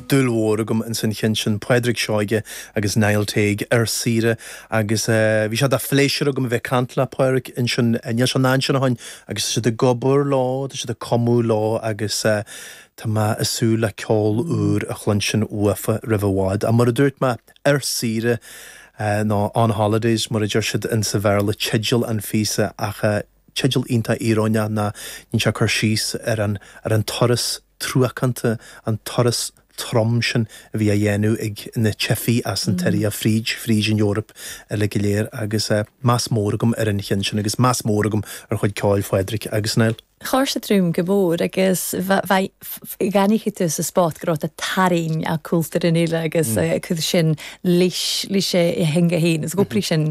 dúil mhór agam ins an cheann sin, Pádraig Seoige agus Niall Teague ar saoire agus bhí sé de phléisiúr agam a bheith ag caint le Pádraig ansin, níl sé in ansin ó shin agus tá siad ag obair leo, tá siad ag cumadh leo agus tá mé ag súil le ceol úr a chluinstin uafa roimh i bhfad. Ach mar a dúirt mé, ar saoire, nó on holidays mar a deir siad insa Bhéarla teideal an phíosa ach eh. Teideal iontach íoróineach ná níl sé ag cur síos ar an ar an turas truacánta, an turas trom sin a bhí á dhéanamh ag na teifigh as an tSiria fríd fríd an Eoraip uilig go léir agus eh meas mór agam ar an cheann sin agus meas mór agam ar chuid ceoil Phádraic agus Niall. Char sa droim go mór agus bheinn gan iachadh tú sa spot go raibh tú tarraing a' cúltúr an fhile agus eh sin leis leis a theanga fhéin is go bhfuil sin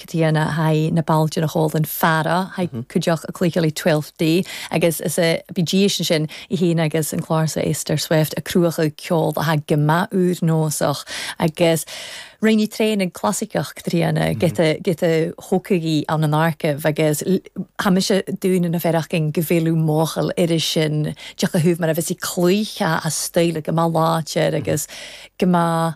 Caitríona haghaidh na bailte nach eol don Pharaidh haghaidh Cuideacht a Cloíchealaigh Twelfth Day agus is a bhí diaidh sin sin í féin agus an clár sa Esther Swift a cruachadh ceol atá go mba úr nósach agus Roinneadh traonaigh clasaiceach Caitríona giota giota thógfadh í ann an Arcaibh agus tá mise dúinn an bhfear againn go bhfeilfeadh mothall iris sin Deoch a shubh mar a bheas í cloíte as style go mba láidir agus go mba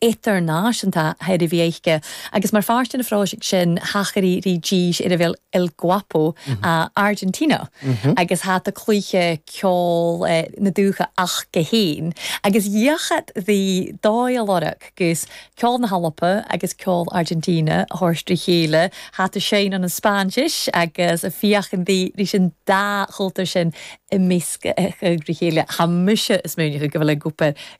idirnáisiúnta tairbheacha, agus mar pháirt den phróiseacht sin thacaigh Regis ar a bhfuil El Guapo Argentina agus hata cluiche ceoil na dúiche ach go haon agus dhíochat dhi dóigh a lorg gus ceol na hEorpa agus ceol Argentina a thabhairt le chéile, hata Shane an Spáinnis agus a féachaint dhi ris an dá chultúr sin i measc a chéile. Tá mise ag smaoineamh go bhfuil El Guapo.